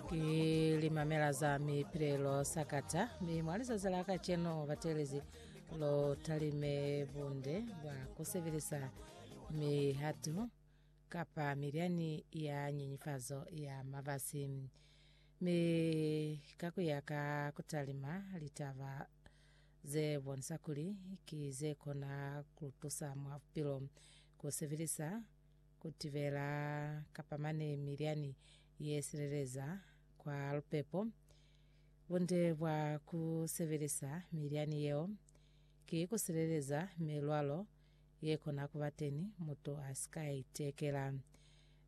ki limamela za mipilelo sakata mi mwa lizazi la kaceno batelezi lo talime bunde bwa kusebelisa mihatu kapa milyani ya nyenyefazo ya mabasi mi ka kuya ka kutalima litaba ze bonisa kuli ki ze kona kutusa mwa bupilo kusebelisa Ku tibela kapa mane milyani ye sileleza kwa lupepo. Bunde bwa ku sebelisa milyani yeo ki ku sileleza milwalo ye kona ku ba teni mutu a si ka itekela,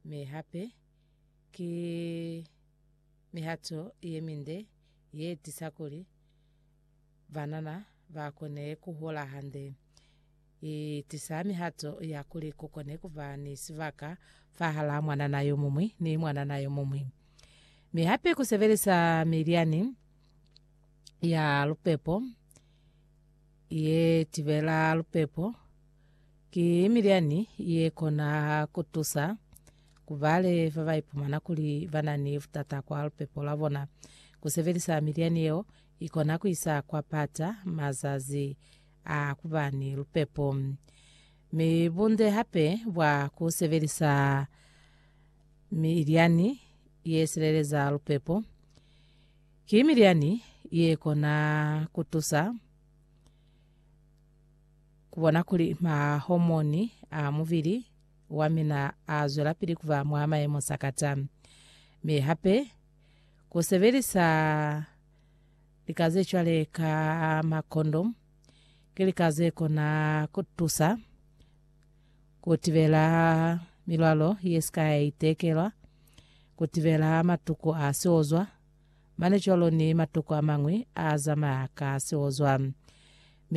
mi hape ki mihato ye minde ye tisa kuli banana ba kone ku hola hande. I tisa mihato ya kuli ku kone ku ba ni sibaka fahal'a mwanana yo muñwi ni mwanana yo muñwi. Mi hape ku sebelisa milyani ya lupepo ye tibela lupepo ki milyani ye kona ku tusa ku bale ba ba ipumana kuli ba na ni butata kwa lupepo lwa bona. Ku sebelisa milyani yeo I kona ku isa kwa pata mazazi a ku ba ni lupepo. Mi bunde hape bwa ku sebelisa milyani ye sileleza lupepo ki milyani ye kona ku tusa ku bona kuli mahomoni a mubili wa mina a zwelapili ku ba mwa mayemo sakata. Mi hape Ku sebelisa lika ze cwale ka makondomu ki lika ze kona ku tusa ku tibela milwalo ye si ka ya itekelwa, ku tibela matuku a siozwa, mane cwalo ni matuku a mañwi a zamaya ka siozwa.